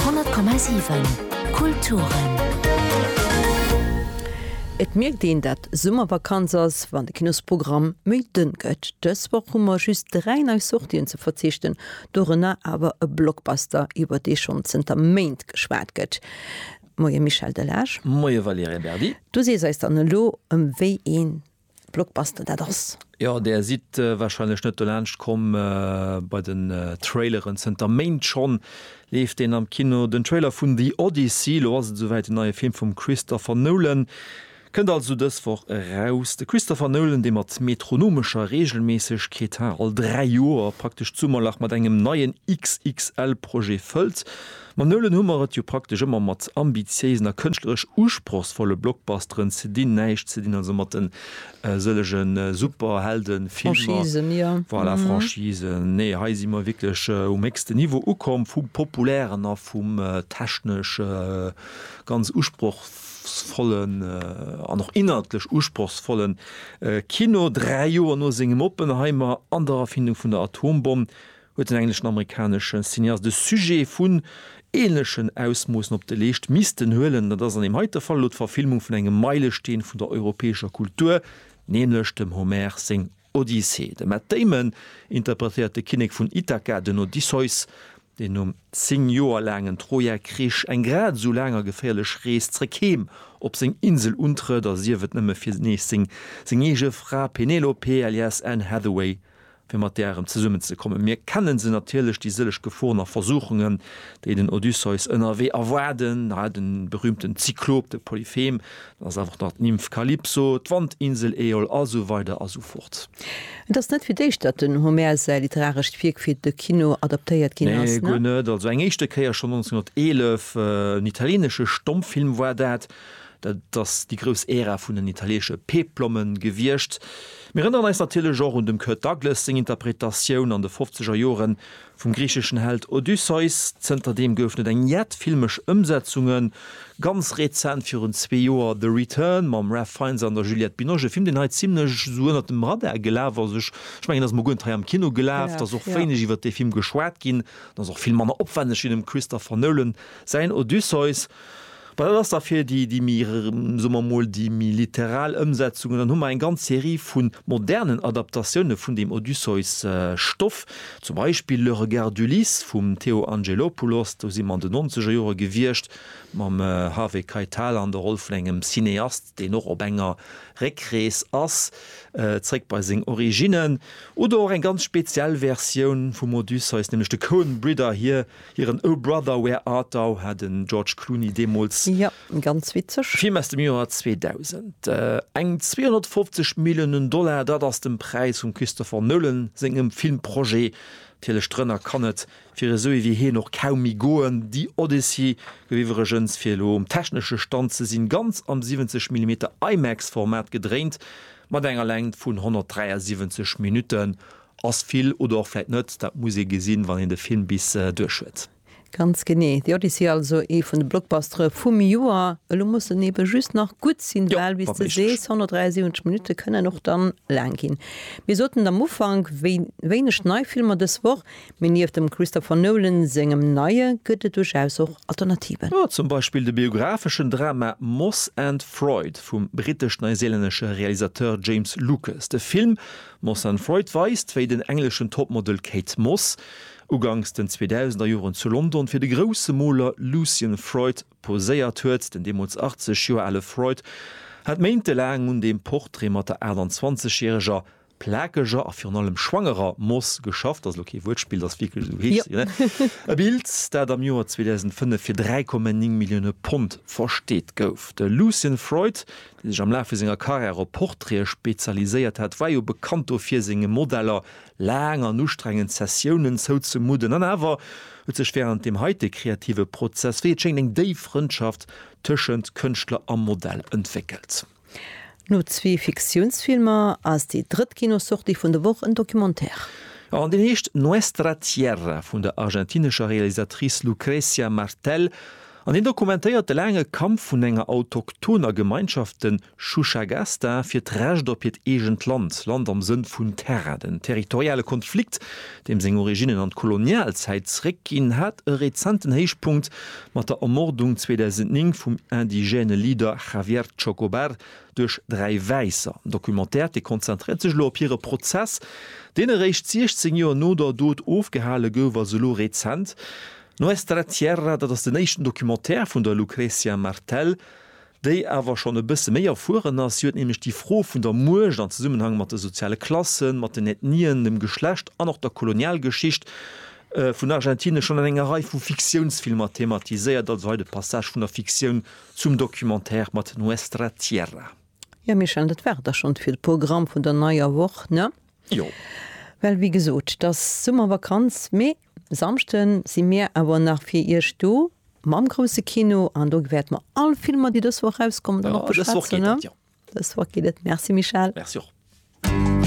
100,7 Kulturen. Et mierkt een dat Summervakanz ass, wann de Kinosprogramm méi dënn gëtt. Dës Woch hu mer just 3 nei Sortien ze verzichten, dorënner awer e Blockbuster iwwer dee schonn zënter Méint geschwat gëtt. Moie Michel Delage. Moie Valerien Berdi. Du sees eis dann elo ëm wéi een Blockbuster dat ass. Jo, där sidd wahrscheinlech net dolaanscht komm bei den Traileren. Zënter Méint schonn leeft deen am Kino. Den Trailer vun The Odyssey, elo ass et esouwäit, den neie Film vum Christopher Nolan kënnt also dës Woch eraus. De Christopher Nolan, dee mat metronomescher Reegelméissegkeet, ha all dräi Joer praktesch d'Summerlach mat engem neien XXL-Projet fëllt, Mam Nolan hu mer et jo praktesch ëmmer mat ambitiéisen a kënschtleresch usprochsvolle Blockbusteren ze dinn, näischt ze dinn also mat den sëllege Superheldenfilmer, voilà, Franchisen, nee, hei si mer wierklech um héchsten Niveau ukomm, vum populären a vum technesch ganz usprochsvollen an och inhaltlech usprochsvolle Kino. Dräi Joer no sengem Oppenheimer an der Erfindung vun der Atombomm huet den engleschen-amerikanesche Cineast e Sujet vun änlechen Ausmoossen op de Leescht missten huelen. Dat ass an deem heite Fall elo d'Verfilmung vun engem Meilesteen vun der europäescher Kultur, nämlech dem Homer seng Odyssee. De Matt Damon interpretéiert de Kinnek vun Ithaka, den Odysseus, deen nom zéng Joer laangen Troja-Krich eng grad esou laang a geféierlech Rees zréck heem op seng Insel untrëtt a sief et nëmme fir nees seng eege Fra Penelope alias Anne Hathaway fir mat där erëm zesummenzekommen. Mir kennen se natierlech, déi sëlleg Geforen a Versuchungen, déi den Odysseus ënnerwee erwaarden, hei de berühmten Zyklop, de Polyphem, dann ass einfach nach d'Nymph Kalypso, d'Wandinsel Äol a sou weider a sou fort. Et ass net fir d'éischt, datt den Homer säi literarescht Wierk fir de Kino adaptéiert ginn ass. Nee, guer net. Also eng éischte Kéier, schonn 1911, en italienesche Stommfilm war dat. Dat ass déi grouss Ära vun den italiesche Peplommen gewiescht. Mir rënneren eis natierlech och un dem Kirk Douglas seng Interpretatioun an de fofzeger Jore vum griicheschen Held Odysseus. Zënter deem gouf net eng jett filmesch Ëmsetzungen. Ganz rezent, virun zwee Joer, The Return mam Ralph Fiennes an der Juliette Binoche, e Film deen hei zimlech esou ënnert dem Radar gelaf ass. Ech mengen, ass mol guer net hei am Kino gelaf. Et ass och wéineg iwwert dee Film geschwat ginn. En ass och vill manner opwenneg wéi dem Christopher Nolan säin Odysseus. Mä dat ass da fir déi, déi méi, soe mer emol, déi méi literal Ëmsetzungen. Dann hu mer eng ganz Serie vu modernen Adaptatioune vun deem Odysseus-Stoff, zum Beispill Le regard d'Ulysse vum Theo Angelopoulos, do si mer an de Nonzegerjore gewiescht, mam Harvey Keitel an der Roll vun engem Cineast, deen och op enger Réckrees ass, zréck bei seng Originnen. Oder och eng ganz speziell Versioun vum Odysseus, nämlech de Coen-Bridder hir Hiren O Brother, Where Art Thou? hat de George Clooney deemools. Jo, ganz witzeg. Film aus dem Joer 2000. Eng 250 Milliounen Dollar, dat ass den Präis vum Christopher Nolan sengem Filmprojet. Natierlech drënner kann et fir esou ee wéi hien och kaum méi goen. The Odyssey gouf iwwregens, fir elo um technesche Stand ze sinn, ganz am 70 Millimeter IMAX-Format gedréint, mat enger Längt vun 173 Minutten. Ass vill oder och vläit net, dat muss ee gesinn, wann een de Film bis duerch huet. Ganz genee, The Odyssey also ee vun de Blockbustere vum Joer. Elo muss en eebe just nach gutt sinn, well wéi s de sees, 173 Minutte kënnen och dann laang ginn. Mir soten et am Ufank, wéineg nei Filmer dës Woch, mee nieft dem Christopher Nolan sengem Neie gëtt et duerchaus och Alternativen. Zum Beispill de biographeschen Drama Moss and Freud vum brittesch-neiseelännesche Realisateur James Lucas. De Film Moss and Freud weist, wéi den engleschen Topmodel Kate Moss uganks den 2000er Joren zu London fir de grousse Moler Lucian Freud poséiert huet. Den deemools 80 Joer ale Freud hat méintelaang un deem Portrait mat der 28 järeger plakeger a virun allem schwangerer Moss geschafft. Ass elo kee Wuertspill, et ass wierklech esou, heescht si. E Bild, dat am Joer 2005 fir 3,9 Millioune Pond versteet gouf. De Lucian Freud, dee sech am Laf vu senger Karriär op Portraite spezialiséiert hat, war jo bekannt dofir, senge Modeller laang an ustrengend Sessiounen zouzemudden. An awer huet sech wärend deem heite kreative Prozess, wéi et schéngt, eng déif Frëndschaft tëschent Kënschtler a Modell entwéckelt. No zwee Fiktiounsfilmer ass déi drëtt Kinosortie vun der Woch en Documentaire. Jo, an deen heescht Nuestra Tierra vun der argentinescher Realisatrice Lucrecia Martel An hien dokumentéiert de laange Kampf vun enger autochthoner Gemeinschaft, den Chuchagasta, fir d'Recht op hiert eegent Land, Land am Sënn vun Terra. Den territoriale Konflikt, deem seng Originnen an d'Kolonialzäit zeréckginn, hat e rezenten Héichpunkt mat der Ermordung 2009 vum indigène Leader Javier Chocobar duerch dräi Wäisser. Den Documentaire, dee konzentréiert sech elo op hire Prozess, deen eréischt 16 Joer no der Dot ofgehale gouf, ass elo rezent. Nuestra Tierra, dat ass den éischten Documentaire vun der Lucrecia Martel, déi awer schonn e bësse méi erfueren ass. Si huet nämlech déi Fro vun der Muecht an Zesummenhang mat de soziale Klassen, mat den Ethnien, dem Geschlecht an och der Kolonialgeschicht vun Argentinien schonn an enger Rei vu Fiktiounsfilmer thematiséiert. Also hei de Passage vun der Fiktioun zum Documentaire mat Nuestra Tierra. Jo, Michel, dat war et da schonn fir de Programm vun der neier Woch, ne? Jo. Well, wéi gesot, 't ass Summervakanz, mee Samschden si mir awer nach fir Iech do mam grousse Kino an do wäerte mer all Filmer, déi dës Woch erauskommen, dann och beschwätzen. Dës Woch geet et, jo. Dës Woch geet et. Merci Michèle. Merci och.